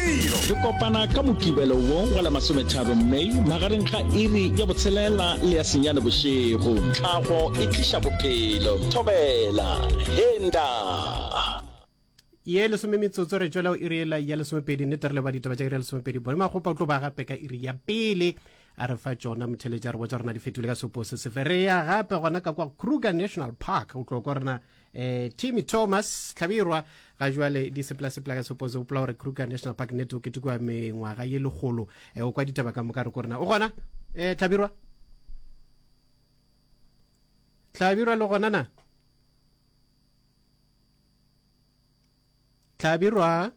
Re kopana ka Mokibelo wo wa la masometharo May magareng ga iri ya botshelela le ya senyane bošego. Tlhago e tliša bophelo. Thobela. Henda. ye lesome metsotso re tšwela o iri ya lesomepedi nnete re leba ditaba tša iri ya lesomepedi bone magopa o tlo ba gape ka iri ya pele a re fa tšona motheletša re botsa rena di fetile ka sepo se sefe re ya gape gona ka kwa kruger national park o tlo kwa rena eh Timmy Thomas Tlhabirwa ga jwale di sepela sepela ka suppose o pula gore Kruger National Park net o ketekwa mengwaga ye legolo eh o kwa ditaba ka moka re ko rena o gona eh Tlhabirwa Tlhabirwa le gona na Hlabirwa,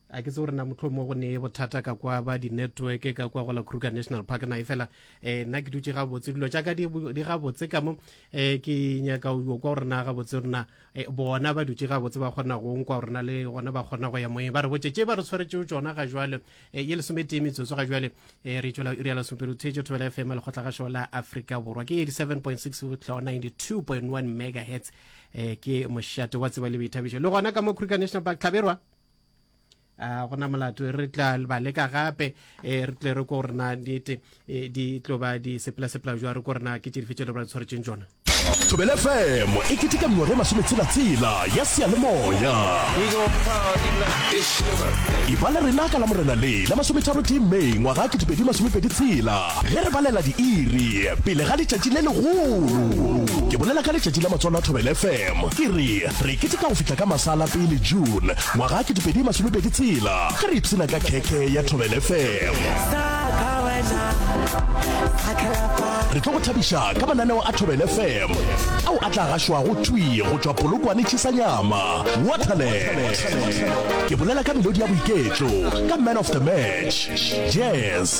a ke tse gore na motlho mo go ne bothata ka kwa ba di-network ka kwa go la kruger national park na e fela eh, nna ke dutse gabotse dilo jaaka di gabotse ka mo um ke nyaka o kwa gore na gabotse rena eh, bona ba dutse gabotse ba kgona go nkwa gore na le gona ba kgona go ya moeng ba re botse tše ba re tshwaretseo tsona ga jale ye lesometee metsotso ga jale re tswela iri ya lesomepelo theetso thobela fm lekgotla ga shola aforika borwa ke 87.6 tlho 92.1 megahertz eh, ke mošate wa tseba le boithabišo le gona ka mo kruger national park tlhaberwa a gona molato re tla ba leka gape eh, re tle re ko rena nete eh, di tlo ba di sepela-sepela jwa re ko rena ke tšedife tšelo ba tshwaretseng tsona thobele fm e keteka mengwaga e masometshela-tshela ya seyalemoya e ba le rena ka la morena le la masometharo tee may ngwaga ketepedi masomepedi tshela Ge re balela diiri pele ga letšatši le legolo, ke bolela ka letšatši la Matswalo a Thobela FM, ke re re keteka go fihla ka masa a la pele June ngwaga a ketepedi masomepedi tshela ge re ipshina ka khekhe ya Thobela FM. Re tlo go thabiša ka mananeo a Thobela FM ao a tla gašwago thwi go tšwa Polokwane Chisanyama, Waterland. Ke bolela ka melodi ya boiketlo, ka Man of the Match, Jazz,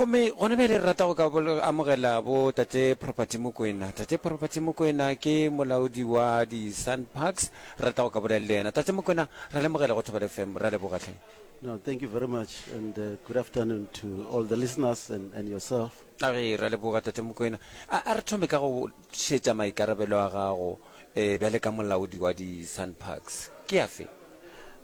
Gomme gona bjale re rata go ka amogela bo Tate Property Mokwena. Tate Property Mokwena ke molaodi wa di Sun Parks. Re rata go ka bolela le yena. Tate Mokwena, ra le amogela go Thobela FM. Ra leboga hle. No, thank you very much and uh, good afternoon to all the listeners and, and yourself. A re ra leboga Tate Mokwena. A, a re thome ka go šetša maikarabelo a gago eh, bjale ka molaodi wa di Sun Parks. Ke afe?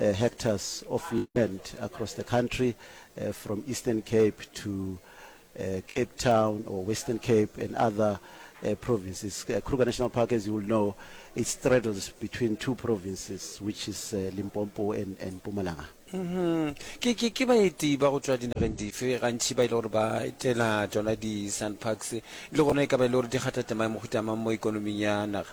uh, hectares of land across the country uh, from Eastern Cape to uh, Cape Town or Western Cape and other uh, provinces. Uh, Kruger National Park, as you will know, it straddles between two provinces, which is uh, Limpopo and, and Pumalanga. Mm-hmm. ke ke ke baeti ba go tswa dinageng dife gantšhi ba e le gore ba etela tsona di-sun parks le gona e ka ba e le gore di kgathatema mohutamang mo ikonoming ya naga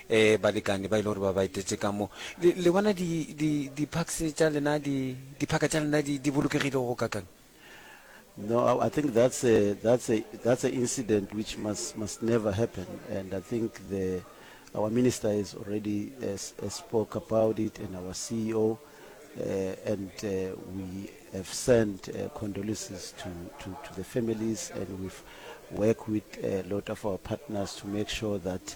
Ee, balekane ba e le gore ba ba etetše ka mo. Le, le bona di, di, di-parks tša lena, di, diphaka tša lena di, di bolokegile go kakang? No, I, I think that's a, that's a, that's a incident which must, must never happen. And I think the, our minister has already has, has spoke about it and our CEO, uh, and uh, we have sent uh, condolences to, to, to the families and we've worked with a lot of our partners to make sure that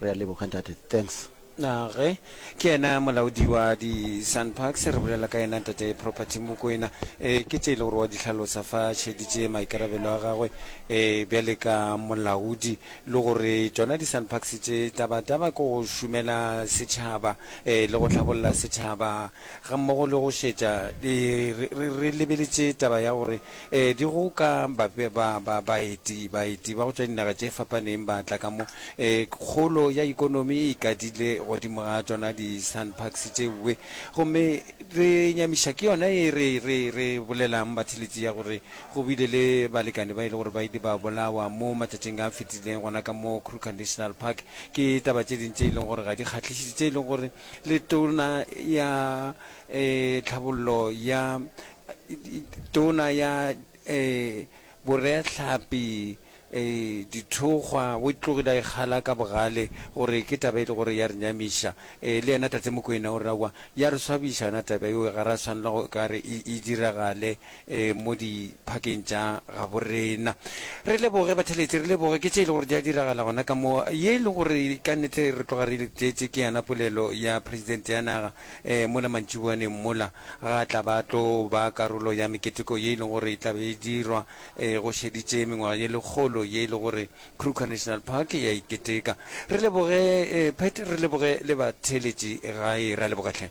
Re a leboga ntate. Thanks. Na ge ke yena molaodi wa di Sun Parks re bolela ka yena Ntate Property Mokoena e ke tše e le gore wa di hlalosa fa šeditše maikarabelo a gagwe e bjale ka molaodi le gore tšona di Sun Parks tše taba taba ke go šumela setšhaba e le go hlabolla setšhaba ga mmogo le go šetša re lebeletše taba ya gore Ee, di go ka ba, ba, ba, baeti, baeti ba go tšwa dinaga tše fapaneng ba tla ka mo. Ee, kgolo ya ekonomi e ikadile godimo ga tšona di-SANParks tše bwe. Gomme re nyamiša ke yona ye re, re, re bolelang batheletši ya gore go bile le balekane ba e le gore ba ile ba bolawa mo matšatšing a fetileng gona ka mo Kruger National Park. Ke taba tše ding tše e leng gore ga di kgahlišiše, tše e leng gore Letona ya, ee, Tlhabollo ya, Tona ya Boreatlhapi Dithokgwa o tlogile a ikgala ka bogale gore ke taba e le gore ya re nyamiša. Le yena Tate Mokoena o re aowa ya re swabiša yona taba eo ga ra swanela go ka re e diragale mo diphakeng tša gabo rena. Re leboge batheletši, re leboge ke tše e le gore di a diragala gona ka mo. Ye e le gore ka nnete re tloga re e tletše ke yona polelo ya Presidente ya naga. eh, mola mantšiboaneng mola, ga a tla ba tlo ba karolo ya meketeko ye e lego gore e tla be e dirwa eh, go šeditše mengwaga ye lekgolo ye e le gore Kruger National Park ya iketeka. Re leboge eh, Pat, re leboge le batheeletši gae, ra leboga hle.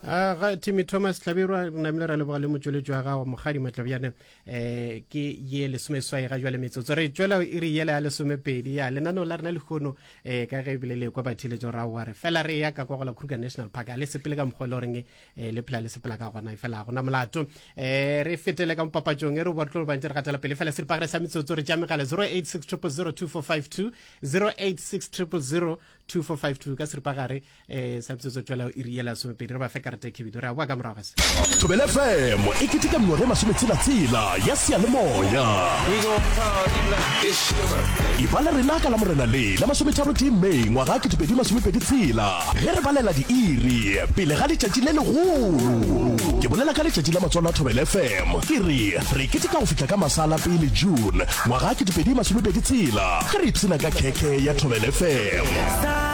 A ga Timmy Thomas Hlabirwa re namile ra leboga le motšweletši wa gago Mokgadi Matlabjane eh ke ye lesome swai ga jwale metsotso re tšwela e re yela ya lesomepedi ya lenaneo la rena lehono eh ka ge ebile le kwa batheletso ra wa re fela re ya ka kwa go la kruger national park a le sepele ka mokgwa e le goreng eh le phela le sepela ka gona e fela gona molato eh re fetele ka mopapatsong e re bo tlo bantse re gatela pele fela seripagare sa metsotso re tša megala 0860002452 0860002452 ka seripagare eh sa bitsotso tswela o iri yela somepedi re ba fe karete e khebidu re a boa ka morago se thobele fm e keteka mengwaga e masometshelatsela ya seyalemoya iba le rena ka la morena le la masometharo tee may ngwaga a ketepedi masomepedi tshela ge re balela diiri pele ga letšatši le legolo ke bolela ka letšatši la matswalo a thobele fm ke re re keteka go fihla ka masala pele june ngwaga a ketepedi masomepedi tshela ge re ipsena ka khekhe ya thobele fm